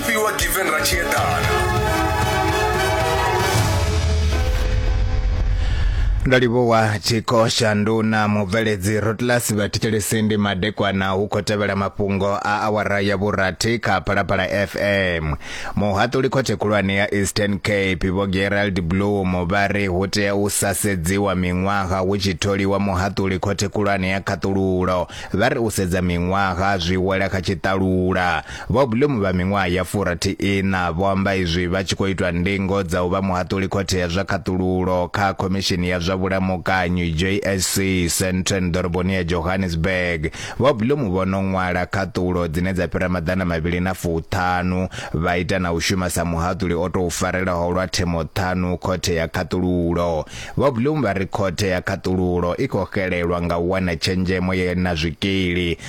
fhiwa given ra tshi eḓana ndo livhuwa tshikho shanduna mubveledzi rotlas vhathetshelesi ndi madekwana hu khou tevhela mafhungo a awara ya vhurathi kha phalaphala fm muhaṱuli khothe khulwane ya eastern cape vho gerald bloom vha ri hu tea u sa sedziwa miṅwaha hu tshi tholiwa muhaṱuli khothe khulwane ya khaṱululo vha ri u sedza miṅwaha zwi wela kha tshiṱalula Vho Bloom vha miṅwaha ya furathi-iṋa vho amba izwi vha tshi khou itwa ndingo dza u vha muhaṱuli khothe ya zwa khaṱululo kha Khomishini ya zwa Vhulamukanyi, JSC, Sandton ḓoroboni ya Johannesburg. Vho Bloom vho no ṅwala khaṱulo dzine dza fhira maḓana mavhili na fuṱhanu, vha ita na u shuma sa muhaṱuli o tou farelaho lwa themo ṱhanu khothe ya khaṱululo. Vho Bloom vha ri khothe ya khaṱululo i khou xelelwa nga u wana tshenzhemo ye na zwikili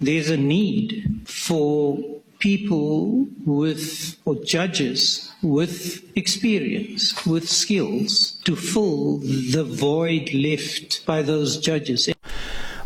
There's a need for people with, or judges with experience, with skills, to fill the void left by those judges.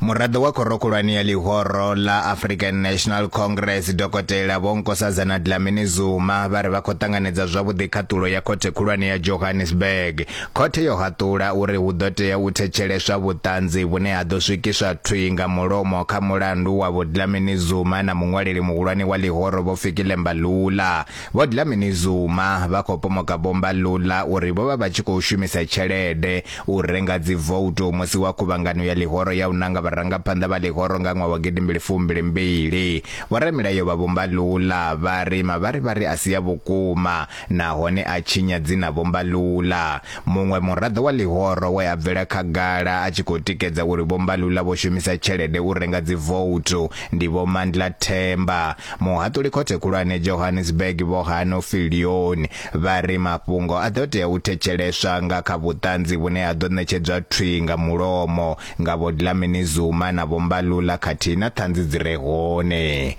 muraḓo wa khoro khulwane ya ḽihoro ḽa african national congress dokotela vho nkosazana dlamini zuma vha ri vha khou ṱanganedza zwavhuḓi khaṱulo ya khothe khulwane ya johannesburg Khothe yo haṱula uri hu ḓo tea u thetsheleswa vhuṱanzi vhune ha ḓo swikiswa thwi nga mulomo kha mulandu wa Vho Dlamini Zuma na muṅwaleli muhulwane wa ḽihoro Vho Fikile Mbalula. Vho Dlamini Zuma vha khou pomoka Vho Mbalula uri vho vha vha tshi khou shumisa tshelede u renga dzivoutu musi wa khuvhangano ya ḽihoro ya u nanga vharangaphanḓa vha ḽihoro nga ṅwaha wa gidimbili fumbili mbili. Vhoramilayo vha Vho Mbalula vha ri mavharivhari a si a vhukuma. nahone a tshinya dzina Vho Mbalula, muṅwe muraḓo wa ḽihoro we a bvela khagala a tshi khou tikedza uri Vho Mbalula vho shumisa tshelede u renga dzivouthu ndi Vho Mandla Themba. Muhaṱuli Khothe Khulwane Johannesburg Vho Hano Viljoen vha ri mafhungo a ḓo tea u thetsheleswa nga kha vhuṱanzi vhune ha ḓo ṋetshedzwa thwi nga mulomo nga Vho Dlamini Zuma na Vho Mbalula khathihi na ṱhanzi dzi re hone.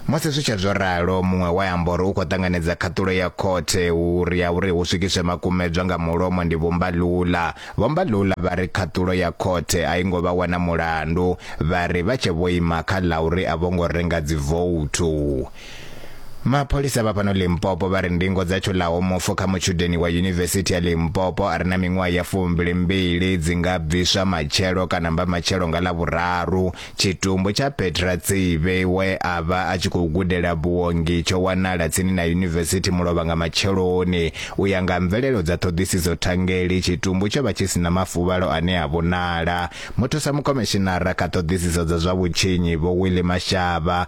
Musi zwi tshe zwo ralo, muṅwe we a amba uri u khou ṱanganedza khaṱulo ya khothe uri ya uri hu swikiswe makumedzwa nga mulomo ndi Vho Mbalula. Vho Mbalula vha ri khaṱulo ya khothe a i ngo vha wana mulandu, vha ri vha tshe vho ima kha ḽa uri a vho ngo renga dzivouthu. Mapholisa vha fhano Limpopo vha ri ndingo dza tshulaho mufu kha mutshudeni wa yunivesithi ya Limpopo a re na miṅwaha ya fumbili mbili dzi nga bviswa matshelo kana mba matshelo nga Lavhuraru. Tshitumbu tsha Petra Tsive we a vha a tshi khou gudela vhuongi tsho wanala tsini na yunivesithi Mulovha nga matsheloni. U ya nga mvelelo dza ṱhoḓisiso thangeli, tshitumbu tsho vha tshi si na mafuvhalo ane a vhonala. Muthusa mukhomishinara kha ṱhoḓisiso dza zwa vhutshinyi Vho Willie Mashaba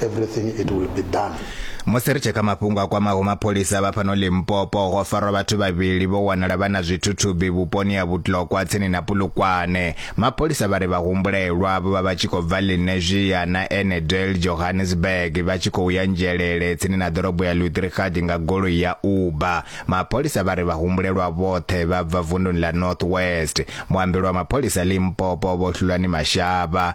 everything it will be done. Musi ri tshi kha mafhungo a kwamaho mapholisa vha fhano Limpopo, ho farwa vhathu vhavhili vho wanala vha na zwithuthubi vhuponi ha Vhutlokwa tsini na Pulukwane. Mapholisa vha ri vha humbulelwa vho vha vha tshi khou bva Lenasia na Annandale Johannesburg vha tshi khou ya Nzhelele tsini na ḓorobo ya Lutrigard nga goloi ya Uber. Mapholisa vha ri vha humbulelwa vhoṱhe vha bva vunduni ḽa North West. Muambeli wa mapholisa Limpopo Vho Hlulani Mashaba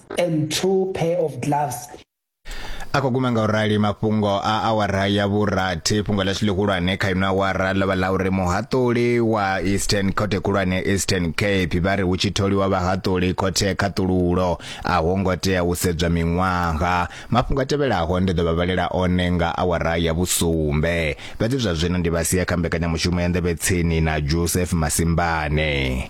and two pair of gloves. a khou guma nga u rali mafhungo a awara ya vhurathi fhungo ḽashu ḽihulwane kha ino awara ḽo vha ḽa uri muhaṱuli wa eastern khothe khulwane eastern cape vha ri hu tshi tholiwa vhahaṱuli khothe khaṱululo a ho ngo tea u sedzwa miṅwaha mafhungo a tevhelaho ndi ḓo vha vhalela one nga awara ya vhusumbe fhedzi zwa zwino ndi vha sia kha mbekanyamushumo ya nḓevhe tsini na joseph masimbane